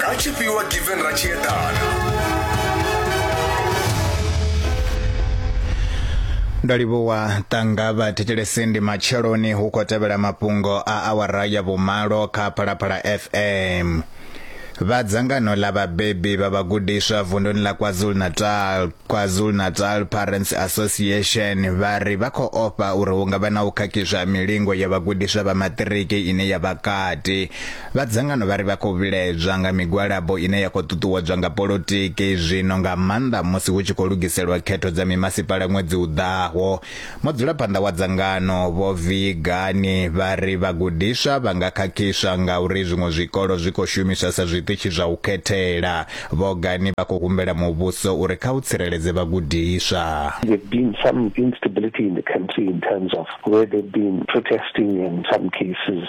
Kha tshifhiwa given ra tshi eḓana. ndo livhuwa tanga vha thetshelesi ndi matsheloni hu khou tevhela mafhungo a awara ya vhumalo kha phalaphala fm vha dzangano ḽa vhabebi vha vhagudiswa vunduni ḽa kwazulu-natal kwazulu-natal parents association vha ri vha khou ofha uri hu nga vha na u khakhizwa milingo ya vhagudiswa vha maṱiriki ine ya vha kati Vha dzangano vha ri vha khou vhilaedzwa nga migwalabo ine ya khou ṱuṱuwedzwa nga polotiki zwino nga maanḓa musi hu tshi khou lugiselwa khetho dza mimasipala ṅwedzi u ḓaho. Mudzulaphanḓa wa dzangano, Vho Vee Gani, vha ri vhagudiswa vha nga khakhiswa ngauri zwiṅwe zwikolo zwi khou shumiswa sa zwiṱitshi zwa u khethela. Vho Gani vha khou humbela muvhuso uri kha u tsireledze vhagudiswa. There've been some instability in the country in terms of where they've been protesting and some cases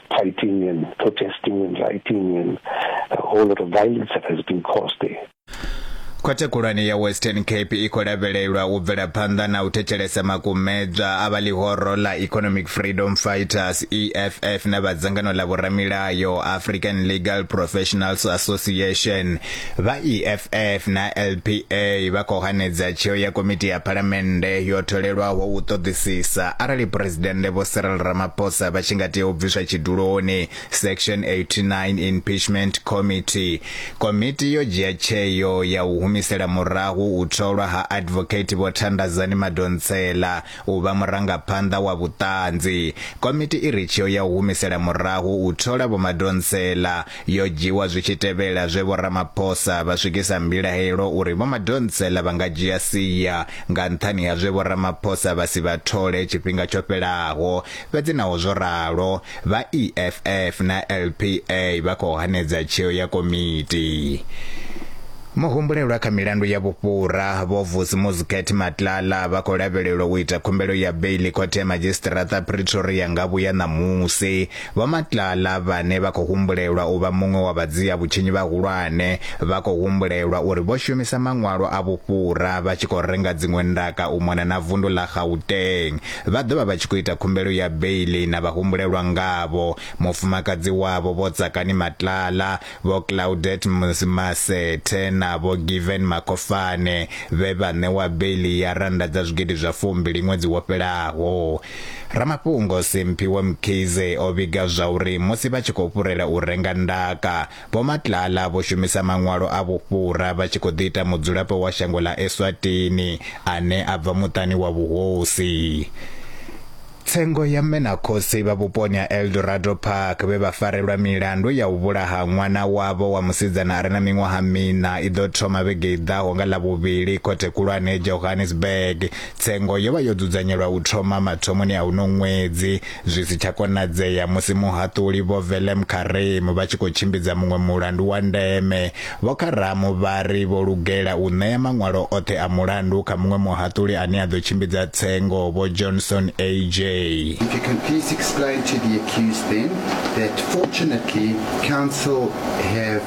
fighting and protesting and rioting and a whole lot of violence that has been caused there. khothe khulwane ya western cape i khou lavhelelwa u bvela phanḓa na u thetshelesa makumedzwa a vha ḽihoro ḽa economic freedom fighters eff na vha dzangano ḽa vhoramilayo african legal professionals association Vha EFF na LPA vha khou hanedza tsheo ya komiti ya phalamennde yo tholelwaho u ṱoḓisisa arali Phresidennde Vho Cyril Ramaphosa vha tshi nga tea u bviswa tshiduloni, Section 89 Impeachment Committee. Komiti yo dzhia tsheo ya u humisela murahu u tholwa ha Advocate Vho Thandazani Madonsela u vha murangaphanḓa wa vhuṱanzi. Komiti i re tsheo ya u humisela murahu u thola Vho Madonsela yo dzhiwa zwi tshi tevhela zwe Vho Ramaphosa vha swikisa mbilahelo uri Vho Madonsela vha nga dzhia sia nga nṱhani ha zwe Vho Ramaphosa vha si vha thole tshifhinga tsho fhelaho. Fhedzi naho zwo ralo, Vha EFF na LPA vha khou hanedza tsheo ya komiti. Muhumbulelwa kha milandu ya vhufhura, Vho Vusi Muziketh Matlala vha khou lavhelelwa u ita khumbelo ya beiḽi khothe ya madzhisiṱiraṱa Pretoria nga vhuya ṋamusi. Vho Matlala vhane vha khou humbulelwa u vha muṅwe wa vhadzia vhutshinyi vhahulwane, vha khou humbulelwa uri vho shumisa maṅwalo a vhufhura vha tshi khou renga dziṅwe ndaka u mona na vundu ḽa Gauteng. vha ḓo vha vha tshi khou ita khumbelo ya beiḽi na vhahumbulelwa ngavho, mufumakadzi wavho Vho Tsakani Matlala, Vho Claudette Masethe na Vho Given Makofane vhe vha ṋewa beiḽi ya rannda dza zwigidi zwa fumbili ṅwedzi wo fhelaho. Ramafhungo Simphiwe Mkhize o vhiga zwauri musi vha tshi khou fhurela u renga ndaka, Vho Matlala vho shumisa maṅwalo a vhufhura vha tshi khou ḓi ita mudzulapo wa shango ḽa Eswatini ane a bva muṱani wa vhuhosi. Tsengo ya mme na khotsi vha vhuponi ha Eldorado Park vhe vha farelwa milandu ya u vhulaha ṅwana wavho wa musidzana a re na miṅwaha miṋa i ḓo thoma vhege i ḓaho nga Ḽavhuvhili khothe khulwane Johannesburg Tsengo yo vha yo dzudzanyelwa u thoma mathomoni a uno ṅwedzi, zwi si tsha konadzea musi muhaṱuli Vho Velem Karim vha tshi khou tshimbidza muṅwe mulandu wa ndeme. Vho Karam vha ri vho lugela u ṋea maṅwalo oṱhe a mulandu kha muṅwe muhaṱuli ane a ḓo tshimbidza Tsengo, Vho Johnson AJ. If you can please explain to the accused then that fortunately counsel have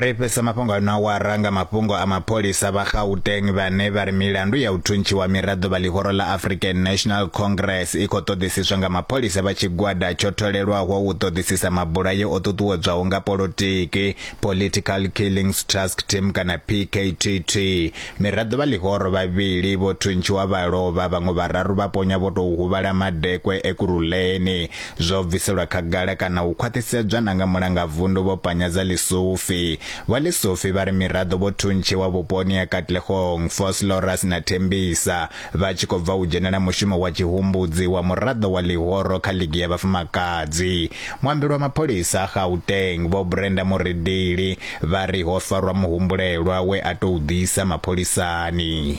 Ri fhedza mafhungo ano awara nga mafhungo a mapholisa vha Gauteng vhane vha ri milandu ya u thuntshiwa miraḓo vha ḽihoro ḽa African National Congress i khou ṱoḓisiswa nga mapholisa vha tshigwada tsho tholelwaho u ṱoḓisisa mabulayo o ṱuṱuwedzwaho nga polotiki, Political Killings Task Team kana PKTT. Miraḓo vha ḽihoro vhavhili vho thuntshiwa vha lovha, vhaṅwe vhararu vha ponya vho tou huvhala madekwe Ekurhuleni. Zwo bviselwa khagala kana u khwaṱhisedzwa na nga Mulangavundu Vho Panyaza Lesufi. Vho Lesufi vha ri miraḓo vho thuntshiwa vhuponi ha Katlehong, Vosloorus na Tembisa vha tshi khou bva u dzhenela mushumo wa tshihumbudzi wa muraḓo wa ḽihoro kha ligi ya vhafumakadzi. Muambeli wa mapholisa a Gauteng, Vho Brenda Muridili, vha ri ho farwa muhumbulelwa we a tou ḓisa mapholisani.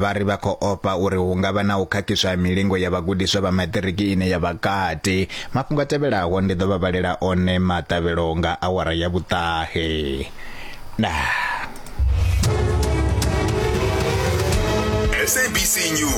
Vha ri vha khou ofha uri hu nga vha na u khakhiswa ha milingo ya vhagudiswa vha maṱiriki ine ya vha kati. Mafhungo a tevhelaho ndi ḓo vha vhalela one maṱavhelo nga awara ya vhuṱahe. Ndaa. SABC News.